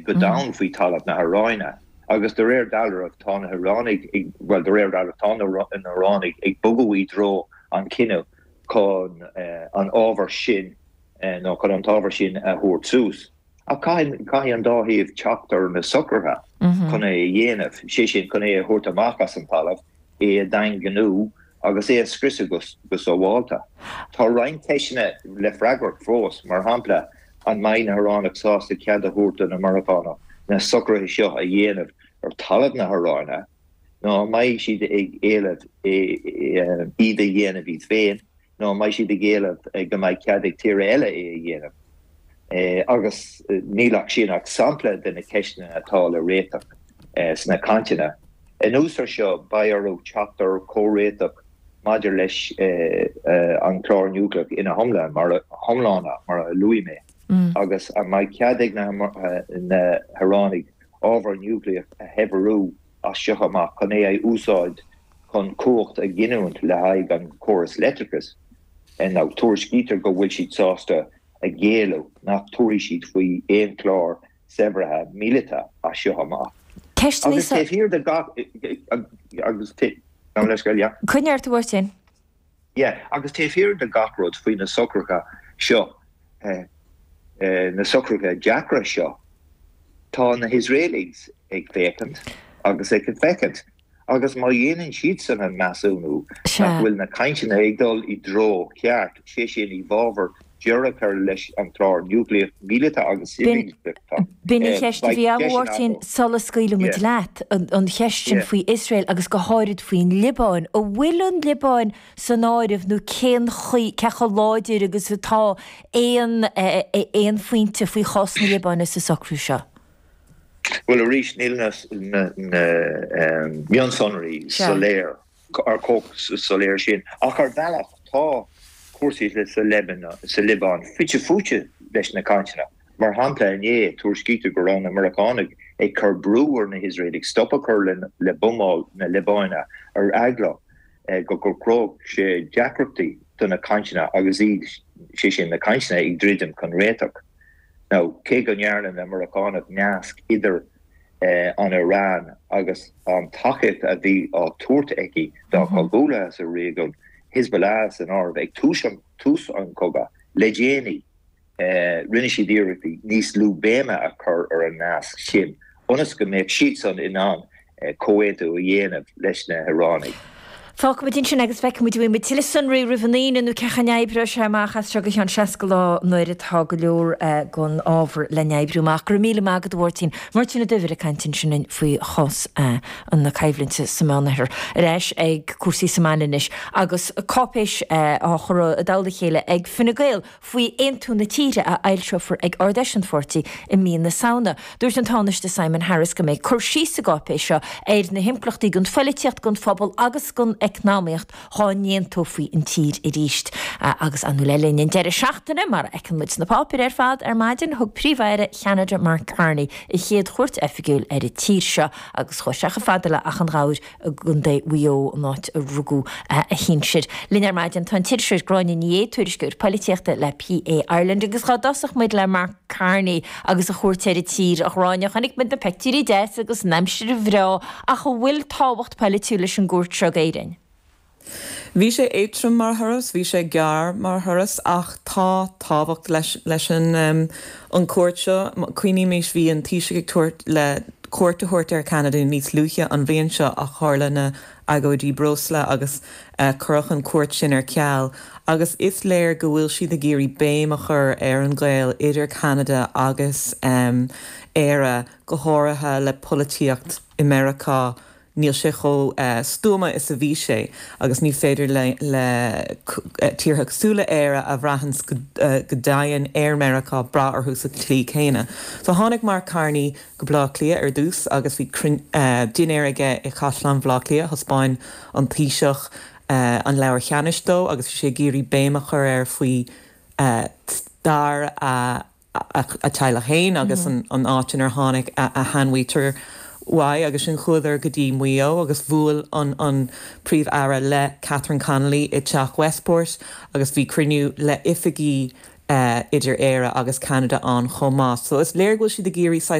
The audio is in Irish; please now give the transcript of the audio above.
go domhain faoi thalamh na hAráine agus de réir dealraimh tá na hIaránaigh ag, bhuel de réir dealraimh tá na hIaránaigh ag bogadh i dtreo an chinnidh chun an ábhar sin nó chun an t-ábhar sin a thabhairt suas. Ach caithfidh, caithfidh an dá thaobh teacht ar na socruithe chun é a dhéanamh, sé sin chun é a thabhairt amach as an talamh é a dhaingniú agus é a scriosadh go sábháilte. Tá roinnt ceisteanna le freagairt fós, mar shampla, an mbeidh na hIaránaigh sásta cead a thabhairt do na Meiriceánaigh na socruithe seo a dhéanamh ar talamh na hIaráine, nó an mbeidh siad ag éileamh iad a dhéanamh iad féin? nó an mbeidh siad ag éileamh go mbeidh cead ag tíortha eile é a dhéanamh? Agus níl ansin ach sampla de na ceisteanna atá le réiteach sna cainteanna. Anuas air seo, beidh orthu teacht ar chomhréiteach maidir leis an chlár niúcleach ina hiomláine, mar a luaigh mé, agus an mbeidh cead ag na hIaránaigh ábhar niúcleach a shaibhriú as seo amach chun é a úsáid chun cumhacht a ghiniúint le haghaidh an chórais leictreachais, mar tuairiscítear go bhfuil siad sásta a ghéilleadh nach dtabharfaidh siad faoi aon chlár saibhrithe míleata as seo amach. Ceisteanna. Agus taobh thiar de gach. Coinnítear ort sin. Yeah, agus taobh thiar de gach rud faoi na socruithe seo, na socruithe deacra seo, tá na hIosraelaigh ag féachaint agus ag féachaint agus má dhéanann siadsan an measúnú nach bhfuil na cainteanna ag dul i dtreo cheart, sé sin, i bhfabhar, deireadh a chur leis an gClár núicléach míleata agus civil, Victor. B'in an cheist a bhí agam ort ansin sula scaoilfidh muid leat, an cheist sin faoi Iosrael agus go háirid faoin Liobáin. An bhfuil an Liobáin san áireamh nó cén chaoi, cé chomh láidir agus atá aon, aon phointe faoi chás na Liobáine sa socrú seo? Bhuel arís, níl na mionsonraí soiléir. ró, chomh soiléir sin ach ar bhealach. Tá cúrsaí sa Liobáin fite fuaite leis na cainteanna. Mar shampla, inné, tuairiscítear go raibh na Meiriceánaigh ag cur brú ar na hIosraelaigh stop a chur le buamáil na Liobáine ar eagla go gcruthódh sé deacrachtaí do na cainteanna agus iad, sé sin, na cainteanna, ag druidim chun réiteach. Cé go ndearna na Meiriceánaigh nasc idir. an Iaráin agus an tacaíocht a bhí á tabhairt aici dá chomhghuaillithe sa réigiún, Hezbollah san áireamh, ag tús an chogaidh. Le déanaí, rinne siad iarrachtaí níos lú béime a chur ar an nasc sin ionas go mbeadh siadsan in ann comhaontú a dhéanamh leis na hIaránaigh. Fágfaimid ansin agus feicfimid an bhfaighidh muid tuilleadh sonraí roimh an Aoine nó cén chaoi a n-oibreoidh sé amach as seo go cheann 60 lá nuair atá go leor den ábhar le n-oibriú amach. Go raibh míle maith agat, a Mháirtín. Máirtín Ó Duibhir ag caint ansin linn faoi chás na coimhlinte sa Mheánoirthear. Ar ais ag cúrsaí sa mbaile anois agus cáipéis á chur i dtoll a chéile ag Fine Gael. faoi aontú na tíre a fhoilseofar ag Ard-Fheis an pháirtí i mí na Samhna. Dúirt an Tánaiste Simon Harris go mbeidh cur síos sa gcáipéis seo ar na himpleachtaí don phoilitíocht, don phobal agus don eacnamaíocht dhá n-aontófaí an tír arís. Agus ansin le linn an deireadh seachtaine, mar a fheiceann muid sna páipéir ar fad, ar maidin thug Príomh-Aire Cheanada Mark Carney a chéad chuairt oifigiúil ar an tír seo agus chuaigh sé chomh fada le Achadh Ghobhair, i gContae Mhaigh Eo, an áit a rugadh a shinsear. Linn ar maidin tá an t-iriseoir Gráinne Ní Aodha, tuairisceoir poilitíochta le PA Ireland, agus dhá dtosódh muid le Mark Carney agus a chuairt ar an tír. A Ghráinne, chonaic muid na pictiúirí deasa agus an aimsir bhreá, ach an bhfuil tábhacht poilitiúil leis an gcuairt seo go hÉirinn? Bhí sé éadrom mar thuras, bhí sé gearr mar thuras ach tá tábhacht leis, leis an an cuairt seo. Cuimhnímis, bhí an Taoiseach ag dúil le cuairt a thabhairt ar Cheanada níos luaithe an bhliain seo ach tharla na agóidí breosla agus cuireadh an cuairt sin ar ceal agus is léir go bhfuil siad ag iarraidh béim a chur ar an ghaol idir Ceanada agus Éire go háirithe le polaitíocht i Meiriceá níl sé chomh stuama is a bhí sé agus ní féidir le tíortha cosúil le Éire a bhraitheanns go tréan ar Mheiriceá brath orthu sa tslí chéanna. So tháinig Mark Carney go Baile Átha Cliath ar dtús agus bhí dinnéar aige i gCaisleán Bhaile Átha Cliath, thaispeáin an Taoiseach Leabhar Cheanannais dó agus bhí sé ag iarraidh béim a chur air faoi stair a a theaghlach féin agus an áit inar tháinig a sheanmhuintir uaidh agus ansin chuadar go dtí Maigh Eo agus bhuail an Príomh-Aire le Catherine Connolly i dTeach Westport agus bhí cruinniú le oifigigh idir Éire agus Ceanada ann chomh maith so is léir go bhfuil siad ag iarraidh saghas